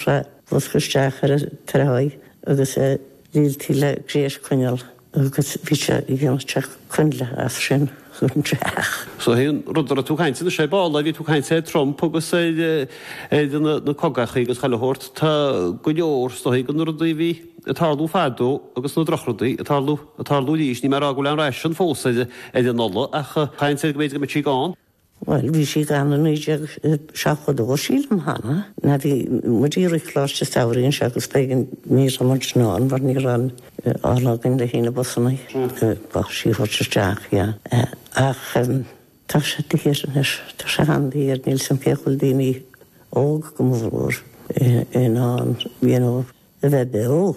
Sa bhosca isteach ar an tráigh agus líontaí le gréis coinnle agus bhí sé ag déanamh teach coinnle as sin go brách. Seo é an rud a raibh tú ag caint, ar ndóigh ball a bhí tú ag caint ar Trump agus ar na cogachaí agus chuile shórt, tá go leor is dóichí dhe na rudaí a bhí ag tarlú fadó agus na drochrudaí ag tarlú, ag tarlú arís. Níl mé ag rá go bhfuil aon ráisiún fós ar an ola ach tá an chaint air go mb'fhéidir go mbeidh sí gann. Bhuel, bhí sí gann i 1972, sílim, Hannah. Na, bhí muid i rith Coláiste Samhraidh anseo agus b'éigean, ní raibh muid in ann mar ní raibh aon ola againn le haghaidh na busanna b'fhusa í a thabhairt isteach, yeah. Ach tá sé daor anois, tá sé an-daor, níl fhios agam cén chaoi go bhfuil daoine óg go mór mhór in ann, you know, a bheith beo.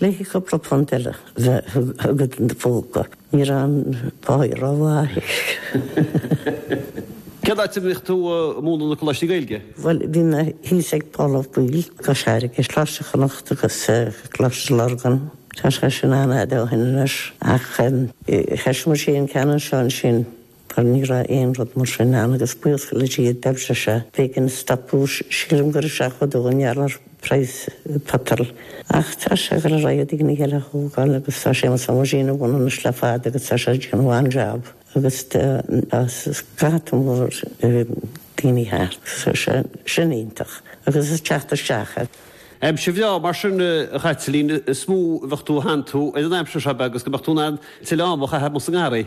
Le haghaidh cúpla punt eile don phóca, ní raibh an páighe ró-mhaith. Cén áit a mbíodh tú a' múnadh na Coláistí Gaeilge? Bhuel bhí mé thíos ag Pól Ó Baoill, Cois Fharraige, Coláiste Chonnacht agus Coláiste Lurgan, tá sé sin an-fhada ó shin anois ach thosaigh muid an ceann anseo ansin. Bhuel, ní raibh aon rud mar sin ann agus buíochas le Dia, d'oibrigh sé. B'éigean a stopadh, sílim gur i seachtó dó i ngeall ar phraghas petrol. Ach tá sé ag dul ar aghaidh go dtí an chéad ghlúin eile a thógáil agus tá Séamus Ó Mainnín ina bhun anois le fada agus tá sé ag déanamh an-jab agus tá scata mór daoine thart. Tá sé sin iontach agus ag teacht isteach. Aimsir bhreá mar sin, a Chaitlín, is dóigh a bheadh tú a shantú ar an aimsir seo agus go mbeadh tú in ann tuilleadh ama a chaitheamh sa ngarraí.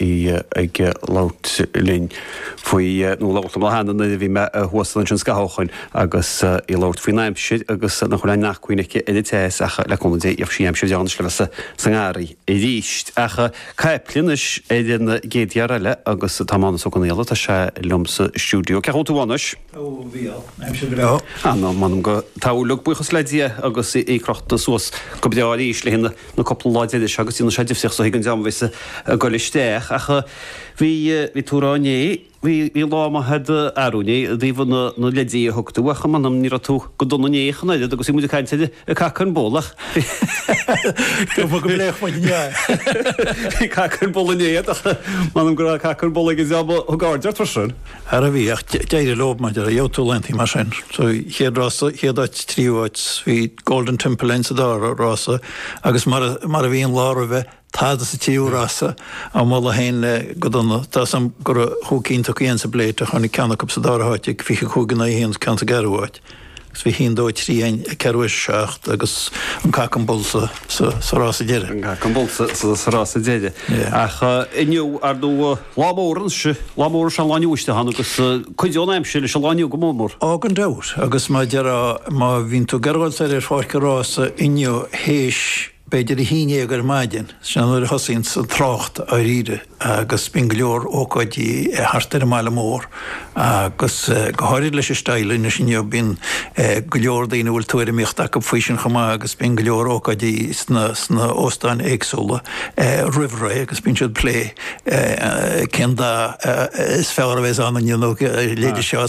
í ag labhairt linn faoi, nó labhairt liom cheana nuair a bhí mé thuas ansin an scathamh ó shin agus í ag labhairt faoin aimsir agus nach bhfuil aon acmhainn aici ar an teas ach le cúnamh Dé tiocfaidh aimsir dheas le bheith sa ngarraí arís. Ach caithfidh mé a dhul anois ar an gcéad fhear eile agus tá Mánus Ó Conghaile, tá sé liom sa stiúideo. Cén chaoi a bhfuil tú anois? Ó bhí an aimsir go breá. Á ná m'anam go dtaitníonn, buíochas le Dia agus í crochta suas go breá arís le haghaidh na. na cúpla lá deiridh seo agus déanann sé difríocht so chuig an dream a bhí sé ag goil isteach ach bhí bhí tú rá inné bhí bhí lá maith a'd arú inné i dtaobh na na leideanna a thug tú ach m'anam ní raibh tú go dona inné ach an oiread agus bhí muid ag caint ar ar cac an bholáin ach bhí go bhfuil go mbeadh muid inné bhí cac an bholáin inné ach m'anam go raibh cac an bholáin ag an dream a thug aird ar tusa Ara bhí, ach d'éirigh leob, m'anam, ach gheobhadh tú laethantaí mar sin. Sa chéad rás, sa chéad áit, tríú áit, bhí Golden Temple ann sa dara rás agus mar a, mar a bhí an lá roimhe, tada sa tríú rás ach ní raibh aon lá go dona. Tá fhios agam go raibh chúig cinn tugtha ansin sa bPláta, tháinig ceann acu sa dara háit ag 25 in aghaidh a haon ceann sa gceathrú áit. Agus bhí haon, dó, trí, an ceathrú, a seacht agus an cac an bul sa, sa, sa rás deireadh. Yeah. Ach inniu, ar ndóigh, lá mór ansin, lá mór is ea an lá inniu a Sheáin agus cuideoidh an aimsir leis an lá inniu go mór mór. Á gan dabht. Agus má deirim, má bhíonn tú ag gabháil soir ar pháirc an rása inniu théis, B'fhéidir a haon déag ar maidin, sin nuair a thosaíonns an trácht dháiríre agus bíonn go leor ócáidí thart ar an mbaile mór agus go háirid leis an style anois inniu bíonn go leor daoine a bhfuil tuairimíocht acu faoi sin chomh maith agus bíonn go leor ócáidí sna óstáin éagsúla roimh ré agus bíonn siad ag plé cén dath is fearr a bheidh's ann inniu nó a leithéid seo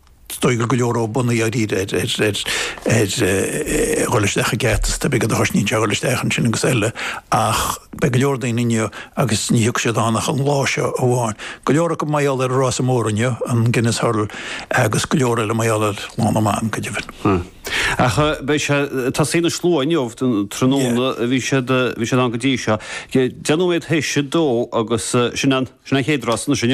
Is dóigh go bhfuil go leor buntáistí ar dhul isteach aige agus tá beagán de chosnaíonn sé dhul isteach ansin agus eile ach beidh go leor daoine inniu agus ní thiocfaidh siad ann ach an lá seo amháin. Go leor acu mar gheall ar an rása mór inniu, an Guinness Hurdle agus go leor eile mar gheall ar Lá na mBan, go deimhin. Ach beidh sé, tosaíonn an slua inniu, tráthnóna a bhí siad, bhí siad ann go dtí seo. Deich nóiméad théis a dó agus sin an, sin an chéad rás anois inniu.